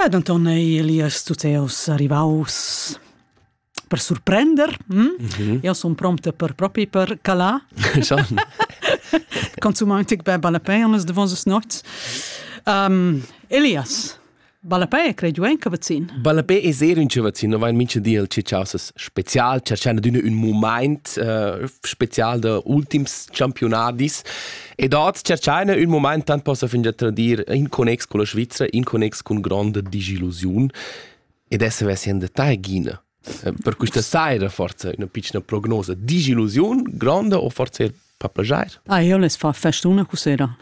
Ed Anton ei Elias tuteus arrivaus per surprender. Hm? Mm -hmm. Io son prompte per propi per cala. Consumant tic be ballapei anas de vosas nots. Um, Elias, Ballapei è credo anche vaccin. Ballapei è sehr un vaccin, no vain mincha di al ciausas special, cercando d'una un moment uh, special de ultims campionadis Ed oz tscherchaina ün mumaint tant possa fingià tradir in connex con la Svizra, in connex con gronda disillusiun ed essa vessi in detagina. Eh, per quista saira forza üna pitschna prognosa. Disillusiun gronda o forza er pappagiair? Ah, io les fa festuna cu sera.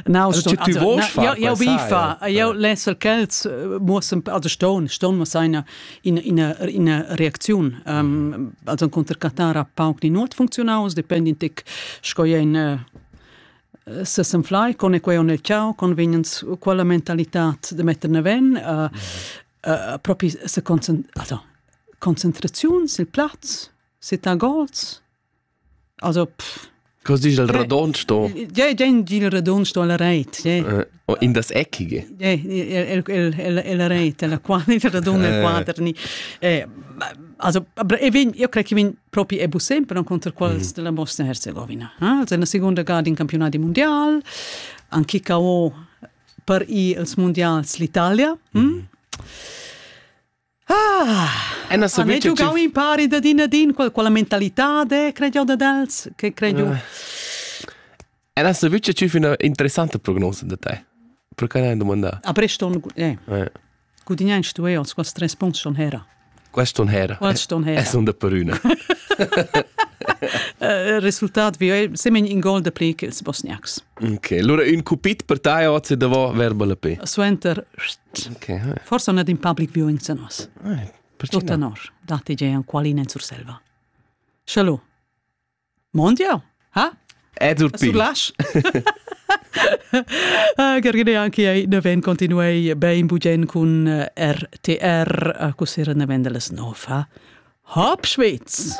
No, also tu vuoi far questa saira? Io bifa, io les al quels muossen also ston, ston ma seina ina, ina reacziun. Um, also conter Qatar ha pauc ni nuot funzionaus, dependent tic sco en eh, se sen fly con e quei on el ciao con vegnens quella mentalità de metter neven uh, uh, propri se concent also concentraziun sil plaz se ta goals Also, pff. Cosa dici il radon sto? Ja, den dil radon sto la reit. Ja. Uh, in das eckige. Ja, el el el la reit, la quadra, il radon el quadra ni. Eh, also, aber ich bin, io credo che bin proprio e sempre contro quals mm. della Bosnia Herzegovina. Also, una seconda gara in campionati mondial, anche KO per i els mondials l'Italia. Mm. Mm. Ah! Anna ha giugau impari da din a din qual, quella mentalitad è crediu ad els che crediu. Uh. Anna sa vuce c'è una interessante prognosa da te. Perché l'hai domanda? A Breston eh. eh. Gudignai stu io, quas tres punts schon hera. Quest schon hera. Quest schon hera. Es un da peruna. Eh, resultat vi semen in gol de pli che ils bosniacs. Ok, allora un cupit per te oggi devo verbale pe. Suenter Forse non è in public viewing se nos. Tot tenor, dati je an qualin en Surselva. Shalom. Mondial, ha? Ed ur pi. Surlash? Gergine anche ai neven continuei bein bugen cun RTR, così ne vendeles nofa. Hop Schweiz!